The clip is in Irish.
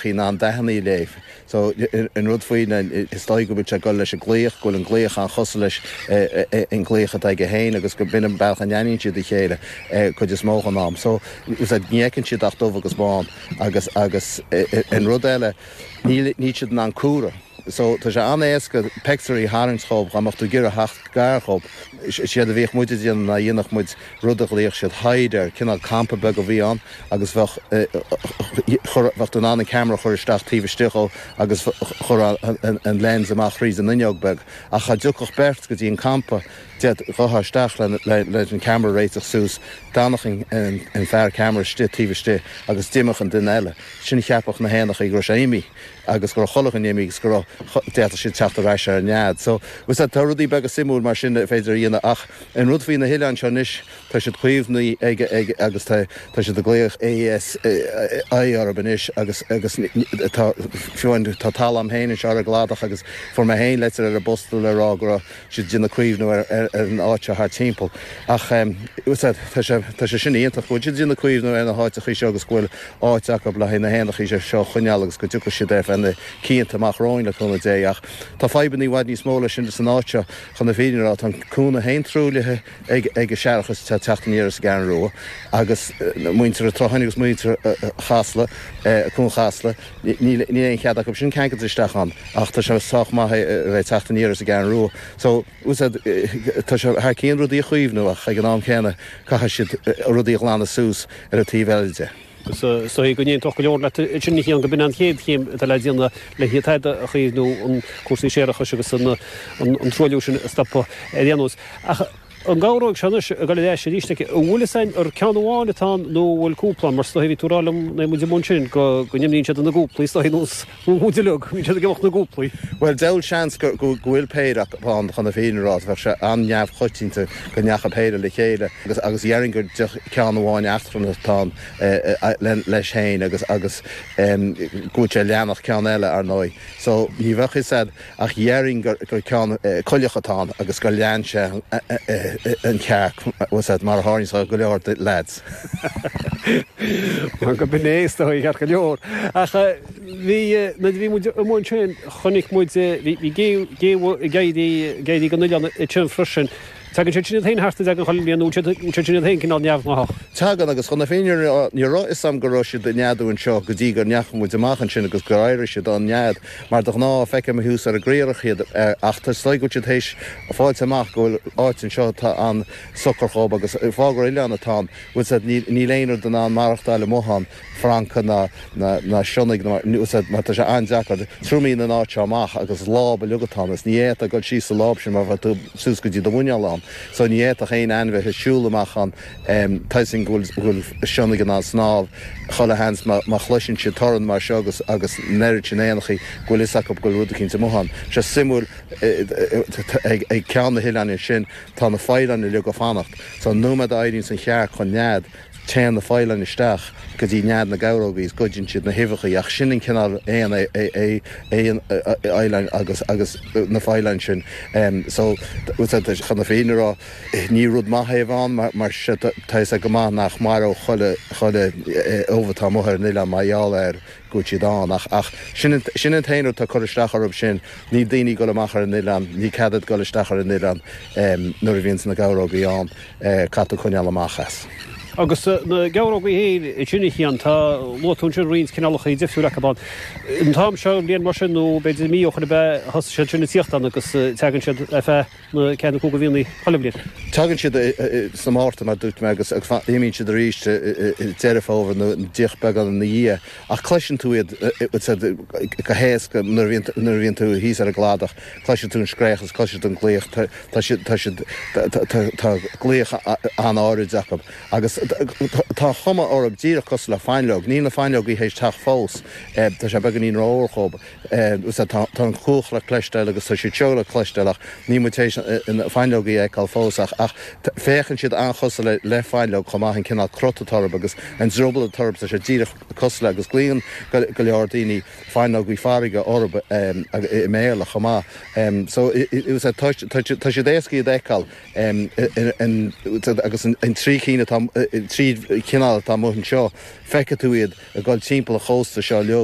in ann dathannaí a léamh. So, an rud faoi ná is dóigh go bhfuil sé ag gol leis an nglaoch, go bhfuil an glaoch an-chosúil leis an nglaoch atá aige féin agus go mb'in é an bealach a n-aithníonn siad a chéile cuid is mó den am. So, is ait ní fheiceann siad ach dubh agus bán. Agus, agus, an rud eile, níl, níl siad in ann comhaireamh. So, tá sé an-éasca peictiúirí a tharraingt dhób dhá mbeadh tú ag iarraidh theacht gar dhób. Is éard a bhíodh muide a dhéanamh ná dhéanfadh muid rud a ghlaodh siad hide air, cineál campa beag a bhí ann agus bheadh, bheadh tú in ann an ceamara a chur isteach taobh istigh dhó agus chur an lens amach thríd an fhuinneog beag ach dhá dtiocfadh beirt go dtí an campa ded' ghuthán isteach leis an ceamara a réiteach suas, d'fhanfadh an fear ceamara istigh taobh istigh agus d'imeodh an duine eile. Ansin cheapfadh na héanachaí go raibh sé imithe. agus go raibh chuile dhuine imithe agus go raibh, d'fhéadfadh siad teacht ar ais ar an nead. So, as I said, tá rudaí beaga suimiúil mar sin a féidir a dhéanamh ach an rud faoi na hoileáin seo anois, tá siad caomhnaithe ag, ag, agus tá, tá siad ag glaoch ASI orthu anois agus, agus tá, fiú amháin, tá talamh a'm féin anseo ar an gcladach agus fuair mé féin leitir ar an bposta le rá go raibh, siad ag déanamh caomhnú ar an áit seo thart timpeall. Ach tá sé sin iontach go bhfuil siad ag déanamh caomhnú ar na háiteachaí seo agus go bhfuil áit acu le haghaidh na héanachaí seo a choinneáil agus go dtiocfaidh siad ar feadh na cianta amach romhainn le cúnamh Dé. Ach tá fadhbanna i bhfad níos mó leis an áit seo. Chun na fírinne a rá tá an cuan féin truaillithe ag an séarachas atá ag teacht aniar as an gCeathrú Rua agus muintir an tSrutháin agus muintir Chasla, Cuan Chasla. Níl aon chead acu sin ceangailt isteach ann ach tá sé sách maith é a bheith ag teacht aniar as an gCeathrú Rua. So, as I said, tá sé thar cionn rudaí a chaomhnú ach ag an am céanna caithfidh siad rudaí a ghlanadh suas ar an taobh eile de. Is dóigh go n-aontódh go leor leat ansin a Chiain, go b'in an chéad chéim atá le déanamh le hiad a chaomhnú, an cúrsaí séarachais agus an truailliú sin a stopadh ar aon nós. Ach. An gheabhróg seo anois a dhul ar ais arís? An bhfuil fhios a'inn ar ceann amháin atá ann nó an bhfuil cúpla? Mar is dóigh, bhí tú a' rá liom nuair a bhí muid amuigh ansin go, go n-imíonn siad ina gcúplaí is dóigh, nós, nós muid uileag, bíonn siad ag imeacht ina gcúplaí. Bhuel, deabhal seans go, go, go bhfuil péire acu ann chun na fírinne a rá, bheadh sé an-neamhchoitianta go ndeacha péire le chéile agus, agus dheirfinn gur ceann amháin eachtrannach atá ann le, leis féin agus, agus go bhfuil sé a' leanacht ceann eile, ar ndóigh. So, ní bheadh fhios a'd. Ach dhéarfainn gur ceann coileach atá ann agus gur lean sé an chearc, mar a tharlaíonn le go leor de leaids. Mar go b'in é is dóigh, ceart go leor. Ach bhí, nuair a bhí muid amuigh ansin, chonaic muid, bhí géabha ag éirí den oileán ansin freisin. Tagann siad sin iad féin thart gach aon bhliain nó bhfuil siad sin iad féin cineál neamhghnáthach. Tagann, agus chun na fírinne a rá, ní raibh fhios agam go raibh siad ag neadú anseo go dtí go ndeachaigh muid amach ansin agus gur éirigh siad den nead, mar de ghnáth, feicim thuas ar an gcriathrach iad, ach is dóigh go bhfuil siad théis fáilt amach, go bhfuil áit anseo atá an-socair dhób, agus faoi gur oileán atá ann, bhuel as I said, níl aon rud in ann maireachtáil amuigh ann. francaigh ná na sionnaigh nó mar úsáid mar tá sé an-deacair triomaíonn an áit seo amach agus láib uilig atá ann is ní fhéadfá dul síos sa láib sin mar bheadh tú suas go dtí do mhuineál ann so ní fhéadfadh aon ainmhithe siúl amach ann tá fhios a'm go bhfuil sionnaigh in ann snámh chuile sheans má chloiseann siad torann mar seo agus agus an oiread sin éanachaí go bhfuil fhios acu go bhfuil rud eicínt amuigh ann sé suimiúil ag ag ceann na hoileáin ansin tá na faoileáin uilig ag fanacht so an nóiméad a éiríonns an chearc den nead Téann na faoileáin isteach go dtí nead na geabhrógaí is goideann siad na huibheachaí ach sin an cineál éan é an faoileán agus na faoileáin sin so chun na fírinne a rá ní rud maith iad a bheith ann mar tá fhios agat go maith nach mairfeadh chuile ubh atá amuigh ar an oileán mar gheall air. go bhfuil siad ann. Ach sin an t-aon rud atá ag cur isteach orthu, sin, níl daoine ag dul amach ar an oileán, níl cead a'd dul isteach ar an oileán nuair a bhíonns na geabhrógaí ann, caithfidh tú coinneáil amach as. Agus na geabhrógaí fhéin ansin a Chian, tá, luaigh tú ansin roinnt cineálachaí difriúil acu ann. An t-am seo den bhliain mar sin, nó b'fhéidir mí ó shoin ab ea, thosaigh siad sin ag tíocht ann agus teagann siad ar feadh, nó ceathair nó cúig de mhíonna poilimhneach. Tagann siad sa Márta, mar dúirt mé, agus imíonn siad arís Deireadh Fómhair nó díreach beagán ina dhiaidh, ach cloiseann tú iad go héasca nuair a bhíonn tú thíos ar an gcladach, cloiseann tú an scréachas, cloiseann tú an glaoch, tá siad, tá siad, tá glaoch an-áirid acu. Agus tá an chuma orthu díreach cosúil le fáinleog, níl na fáinleogaí th'éis teacht fós, tá sé beagáinín rófhuar dhóibh. Sea, tá an chuach le cloisteáil agus tá siad seo le cloisteáil ach níl muid tar éis na fáinleogaí a fheiceáil fós ach féachann siad an-chosúil le le fáinleog chomh maith, an cineál crot atá orthu agus an drioball atá orthu, tá siad díreach cosúil le, agus glaonn go leor daoine fáinleogaí farraige orthu i mBéarla chomh maith. So, sea, tá siad éasca iad a fheiceáil agus an trí cinn atá, an trí chineál atá amuigh anseo, feicfidh tú iad ag dul timpeall an chósta seo leo.